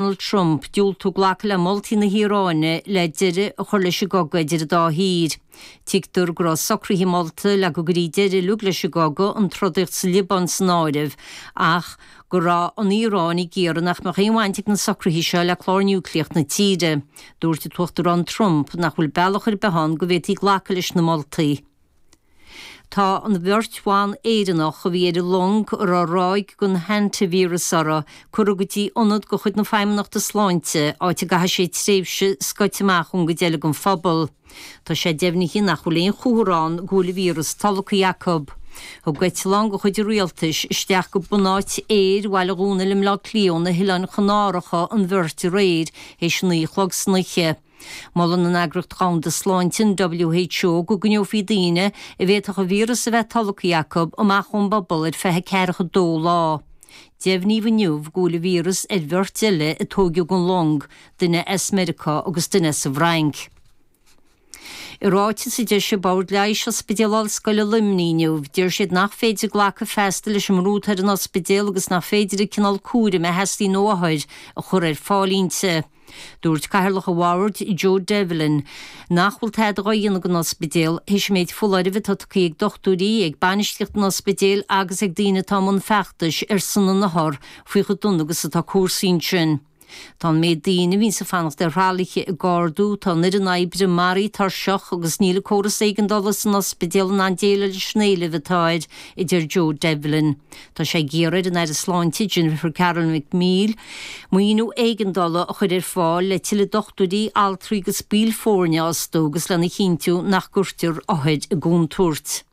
Donald Trump diúltú glacadh le moltaí na hIaráine le deireadh a chur leis an gcogadh idir an dá thír. Tuigtear go raibh socruithe molta le go gcuirfí deireadh uilig leis an gcogadh, an trodaíocht sa Liobáin san áireamh, ach go raibh an Iaráin ag iarraidh nach mbeadh aon bhaint ag na socruithe seo le clár núicléach na tíre. Dúirt an tUachtarán Trump nach bhfuil bealach ar bith ann go bhféadfaí glacadh leis na moltaí. Tá an bheirt bhan Éireannach a bhí ar an long a raibh ráig den hantaivíreas uirthi curtha go dtí ionad de chuid na Feidhmeannachta Sláinte, áit a gcaithfidh siad tréimhse scoite amach ón gcuid eile den phobal. Tá sé deimhnithe nach bhfuil aon chomhartha ann go bhfuil an víreas tolgtha acu. Thug eitleán de chuid an rialtais isteach go bunáit aeir Bhaile Dhónaill i mBleá Cliath ó na hOileáin Chanáracha an bheirt aréir théis a naoi a chlog san oíche. Molann an Eagraíocht Dhomhanda Sláinte, an WHO, go gcoinneofaí daoine, a bhféadfadh an víreas a bheith tolgtha acu, amach ón bpobal ar feadh ceathracha dó lá. Deimhníodh inniu go bhfuil an víreas ar bheirt eile a tóigeadh den long, duine as Meiriceá agus duine as an bhFrainc. I ráiteas a d'eisigh Bord Leighis Ospidéal Ollscoile Luimnigh inniu, deir siad nach féidir glacadh feasta leis an mbrú atá ar an ospidéal agus nach féidir an cineál cúraim a theastaíonn ó othair a chur ar fáil inti. Dúirt Cathaoirleach an Bhoird, Joe Devlin, nach bhfuil tada dhá dhéanamh ag an ospidéal théis an méid foláirimh atá tugtha ag dochtúirí, ag bainistíocht an ospidéil agus ag daoine atá i mbun feachtais ar son na n-othar faoi chomh dona agus atá cúrsaí ansin. Tá an méid daoine a bhíonns ag fanacht ar thralaithe ag ardú, tá an fhoireann oibre maraithe tuirseach agus níl an córas éigeandála san ospidéal in ann déileáil leis an éileamh atá air, a deir Joe Devlin. Tá sé ag iarraidh ar an Aire Sláinte, Jennifer Carroll MacNeill, maoiniú éigeandála a chur ar fáil le tuilleadh dochtúirí, altraí agus baill foirne a fhostú agus lena chinntiú nach gcuirtear othair i gcontúirt.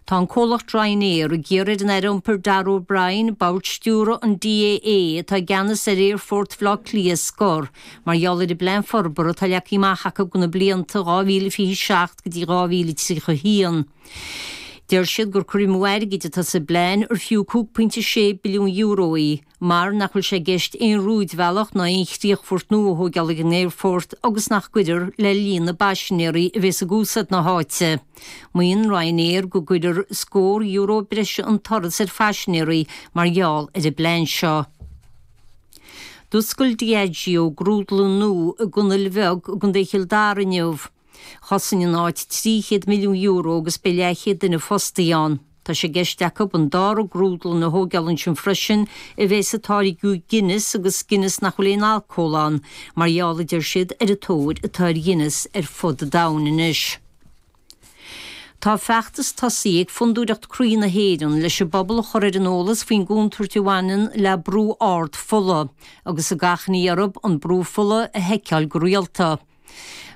Tá an comhlacht Ryanair ag iarraidh ar an Aire Iompair Darragh O'Brien, bord stiúrtha an DAA atá i gceannas ar Aerfort Bhaile Átha Cliath, a scor mar gheall ar an bplean forbartha atá leagtha amach acu do na blianta 2027 go dtí 2031. Deir siad gur cur amú airgid atá sa bplean ar fiú €5.6 billiún í, mar nach bhfuil sé i gceist aon rúidbhealach ná aon chríochfort nua a thógáil ag an aerfort agus nach gcuirfear le líon na bpaisinéirí a bheas ag úsáid na háite. Maíonn Ryanair go gcuirfear scór euro breise an turas ar phaisinéirí mar gheall ar an bplean seo. D'oscail Diageo grúdlann nua i gConnail Bheag i gContae Chill Dara inniu. Chosain an áit €300 milliún agus beidh leathchéad duine fostaithe ann. Tá sé i gceist acu an dara grúdlann a thógáil ansin freisin a bheas ag táirgiú Guinness agus Guinness nach bhfuil aon alcól ann, mar gheall, a deir siad, ar an tóir atá ar Ghuinness ar fud an domhain anois. Tá feachtas tosaithe ag Fondúireacht Croí na hÉireann leis an bpobal a chur ar an eolas faoin gcontúirt a bhaineann le brú ard fola, agus ag achainí orthu an brú fola a sheiceáil go rialta.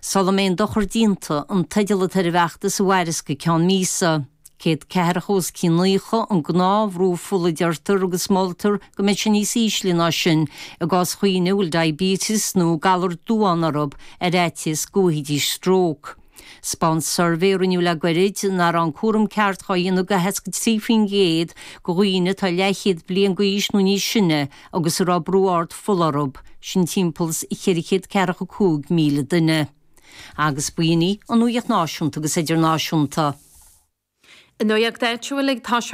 Sula mbeidh an dochar déanta, an teideal atá ar an bhfeachtas a mhairfeas go ceann míosa. 140 os cionn 90 an gnáthbhrú fola a deirtear agus moltar go mbeidh sé níos ísle ná sin i gcás dhaoine a bhfuil diabetes nó galar duán orthu ar fhaitíos go bhfaighidís stróc. Spáint suirbhé a rinneadh le gairid nach raibh an cúram ceart dhá dhéanamh do 63% de dhaoine atá leathchéad bliain d'aois nó níos sine agus a raibh brú ard fola orthu, sin timpeall is ceithre chéad ceathracha a cúig míle duine. Agus ba in í an nuaíocht náisiúnta agus idirnáisiúnta. An nuaíocht áitiúil, tá.